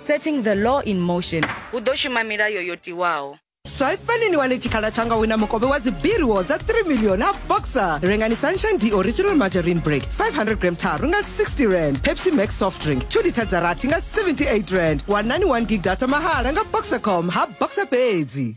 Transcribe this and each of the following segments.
Setting the law in motion. Hu ḓo shuma milayo yo tiwaho. Swaipani ni wane tshikhala tsha nga wina mukovhe wa dzibiriwo dza 3 milioni a boxer rengani sunshine d original margarine break 500 gram tharu nga 60 rand pepsi max soft drink 2 liter dza rathi nga 78 rand wanani 1 gig data mahala nga boxercom ha boxer fhedzi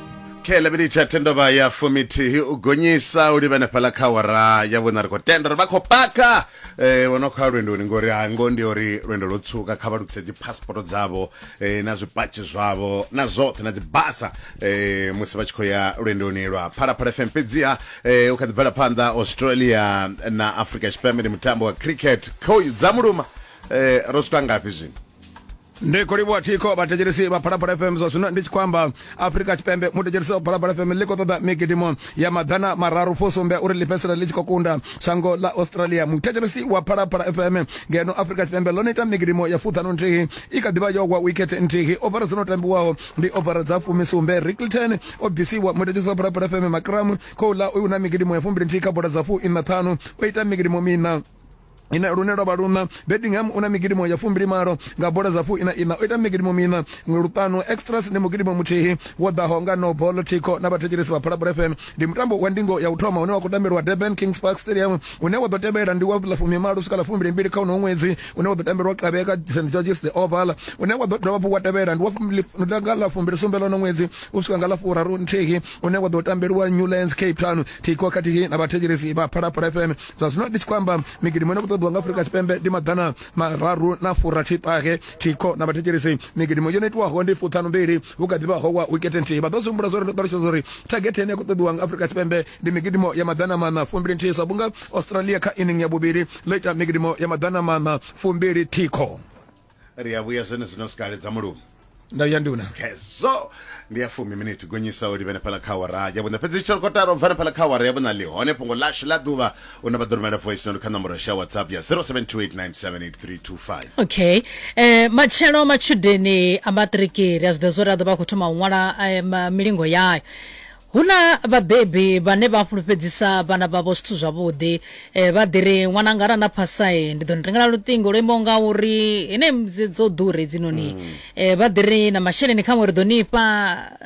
khe lavhili tsha thendovha ya fumithihi u gonyisa u livhene fhala kha wara ya vhona ri khou tenda uri vha khou paka eh, vho no khou ya lwendoni ngori ha ngo ndi uri lwendo lwo tswuka kha vha lukise dziphasporo dzavho eh, na zwipatshi zwavho na zwoṱhe na dzibasa eh, musi vha tshi khou ya lwendoni lwa phalaphala fm fhedziha eh, u kha ḓi bvela phanḓa australia na africa tshipembe ndi mutambo wa cricket khoyu dza muluma eh, ro swika ngafhi zwino ndi khou livhuwa thikho vhathetshelesi vha phalaphala fm zwa zwino ndi tshi khou amba afurika tshipembe muthetshelesi wa phalaphala fm ḽi khou ṱoḓa migidimo ya maḓana mararu fusumbe uri ḽi fhedzisela ḽi tshi khou kunda shango ḽa australia muthetshelesi wa phalaphala fm ngeno afurika tshipembe ḽo no ita migidimo ya fuṱhanu nthihi i kha ḓivha yo gwa wikete nthihi ofara dzo no tambiwaho ndi ofara dza fumisumbe ricklton o bvisiwa muthetshelesi wa phalaphala fm makramu khou ḽa uyu na migidimo ya fumbili nthihi kha bola dza fu ina ṱhanu o ita migidimo mina ine lune lwa vha luṋa bedingham u na migidimo ya fumbilimalo nga bola dza fuina ina o ita migidimo mina ṅwe luṱanu extras ndi mugidimo muthihi wo ḓaho nga no bolo tico na vhathetshelesi vha phalabula fm ndi mutambo wa ndingo ya u thoma une wa khou tambelwa durban kings park stadium une wa ḓo tevhela ndi wa ḽa fumimalo swika ḽa fumbilimbili kha unoho ṅwedzi une wa ḓo tambelwa kavhe ka st georges the oval une wa ḓo dovha hafhu wa tevhela ndi wanga ḽa fumbilisumbe ḽono ṅwedzi u swika nga ḽa furaru nthihi une wa ḓo tambelwa newlands cape town tico khathihi na vhathetshelesi vha phalabula fm zwa zwino ndi tshi khou amba migidimo ine ku ṱoḓiwa nga afurika tshipembe ndi maḓana mararu na furathi ṱahe thikho na vhathetshelesi migidimo yo no itiwaho ndi fuṱhanu mbili hu kha ḓivha howa wikete nthihi vha ḓo zwihumbula zwori ndo ṱalutshedza uri thagete ine ya khou ṱoḓiwa nga afurika tshipembe ndi migidimo ya maḓana maṋa fumbili nthihi sa vhunga australia kha inning ya vhuvhili ḽo ita migidimo ya maḓana maṋa fumbili thikho ri a vhuya zwene zwino sikale dza mulume nda vhuya nduna kezo ndi ya fumi miniti gonyisa u livhene phala kha awara ya vhuṋa fhedzi tshitsholo kotara u bvane phala kha awara ya vhuṋa ḽi hone fhungo ḽashu ḽa ḓuvha u na vha ḓo rumela voice note kha nomboro sha whatsapp ya 0728978325 okay eh, matshelo matshudeni a maṱiriki ri a zwi ḓivha zwo ri a ḓo vha a khou thoma u ṅwala eh, ma- milingo yayo Hu na vhabebi vhane vha fhulufhedzisa vhana vhavho zwithu zwavhuḓi. Eh, vha ḓi ri ṅwananga arali na phasa eh, ndi ḓo ni rengela luṱingo lwo imaho nga uri ine dzi- dzo ḓura hedzinoni eh, vha ḓi ri na masheleni khaṅwe ri ḓo ni fha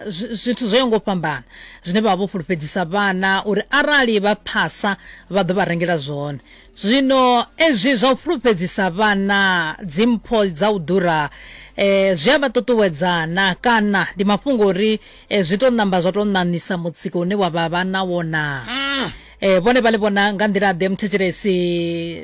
zwi- zwithu zwo yaho nga u fhambana zwine vha vha vho fhulufhedzisa vhana uri arali vha phasa vha ḓo vha rengela zwone zwino ezwi zwa u fhulufhedzisa vhana dzimpho dza u ḓura eh, zwi a vha ṱuṱuwedza na kana ndi mafhungo uri E, zwi tou ṋamba zwa tou ṋaṋisa mutsiko une wa vha vha na wona e, vhone vha ḽi vhona nga nḓila ḓe muthetshelesi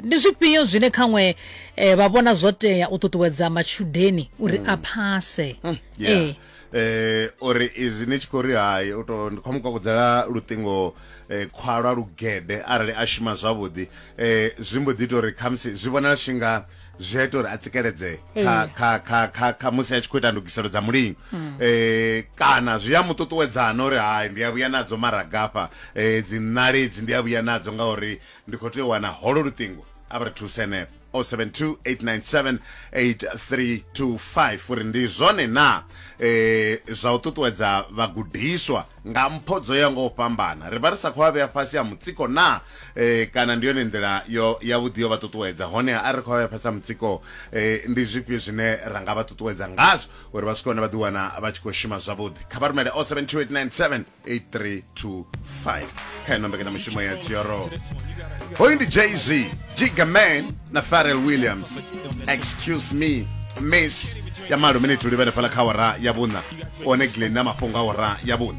ndi zwifhio zwine khaṅwe e, vha vhona zwo tea u ṱuṱuwedza matshudeni uri a phase Yeah. Eh, eh uri izwi ni tshi khou ri hai u to ndi khou mu kokodzela luṱingo eh, khwalwa lugede arali a shuma zwavhuḓi eh zwi mbo ḓi ita uri khamusi zwi vhonala tshi nga zwi a ita uri a tsikeledzee kha, eh. kha, kha, kha, kha musi a tshi khou ita ndugiselo dza mulingo mm. eh, kana zwi a mu ṱuṱuwedzana uri hai ndi a vhuya nadzo maragafha um eh, dzi ṋaledzi ndi a vhuya nadzo ngauri ndi khou tea u wana holo luṱingo a vha ri thuse henefho 0728978325 uri ndi zwone na eh zwa u ṱuṱuwedza vhagudiswa Nga mpho dzo yaho nga u fhambana, ri vha ri sa khou vha vhea fhasi ha mutsiko naa? Ee, kana ndi yone nḓila yo yavhuḓi yo vha ṱuṱuwedza. Honeha arali ri khou vha vhea fhasi ha mutsiko, ee, ndi zwifhio zwine ra nga vha ṱuṱuwedza ngazwo uri vha swike hune vha ḓiwana vha tshi khou shuma zwavhuḓi? Kha vha rumele 072 897 8325. kha ino mbekanyamishumo ya dzioro hoyu ndi jz jiga man na farel williams excuse me miss ya malo minituli vhenefhala kha ora ya vhuṋa one glen na mafhungo a ora ya vhuṋa